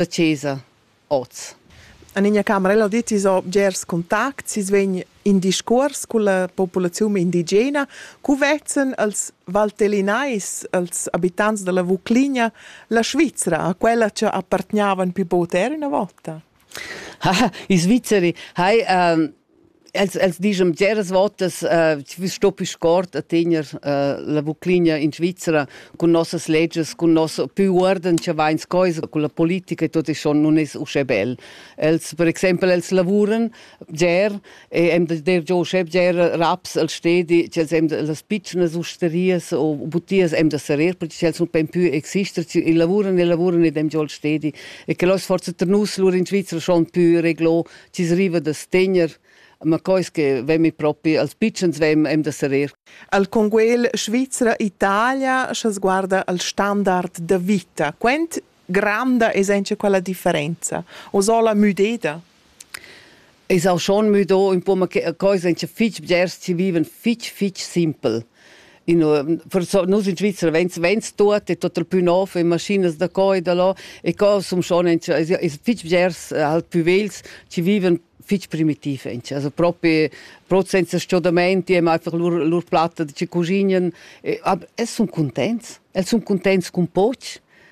da chesa oz. En ina camerella dettis o bgers contacts, sis vegn in discuors culla populaziun indigena, cu vezzan els valtellinais, els abitants dalla Vucligna, la Svizra a quella che appartgnavan più per ina volta. I Svizzeri hai um, Els, els dischan bgeras votas, äh, vi sto più scort a tener äh, la Vuclinia in Svizzera cun nossas leges, cun nos più uorden che va in scoisa, con la politica e tot e schon non es usce bel. Els, per exempel, els lavuran bger e hem da der giò usce bger raps al stedi, che els hem da las piccnas usterias o butias hem da serrer, perché els non pen più exister, e lavuran e lavuran ed hem giò al stedi. E che los forza ter nus lur in Svizzera schon più reglo ci riva da stegner, ma quais che vemi propi als pitschens vem em da serir. Al Conguel Svizra Italia sche sguarda al standard da vita, quent granda es encha quella differenza? O sola müdeda? Es auch schon müdo, un po, ma quais encha fitg bgers ci vivan fitg fitg simpel. In, forsa, nus in Svizzera vegns, vegns tuot è total pü nov, in maschinas da co e da là, e co som schon in, es fitg bgers eh, halt pü vegls, chi vivan fitg primitiv inch, also propi proprio senza schodamenti, e einfach lur, lur platta de ci cusignan, e, aber, es sun contents, els sun contents cun poch,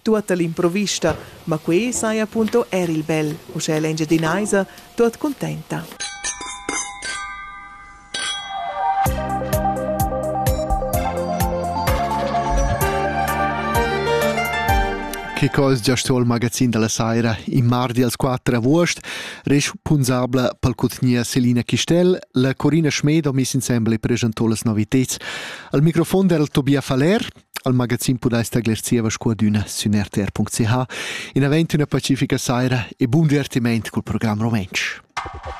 Tuotta l'improvista, ma quei saja punto eir il bel, uschè l'Engiadinaisa, tuot cuntenta. Che cos giast il magazin della saira in mardi als 4 agost, res punzabla pel cutgnia Selina Chistel, la Corina Schmed ho miss insembel e presentò las noviteds. Al microfon era Tobia Faller, al magazin pudais tagliar zieva scuadüna sün rtr.ch. In avent üna pacifica saira e bun divertiment cul program rumentsch.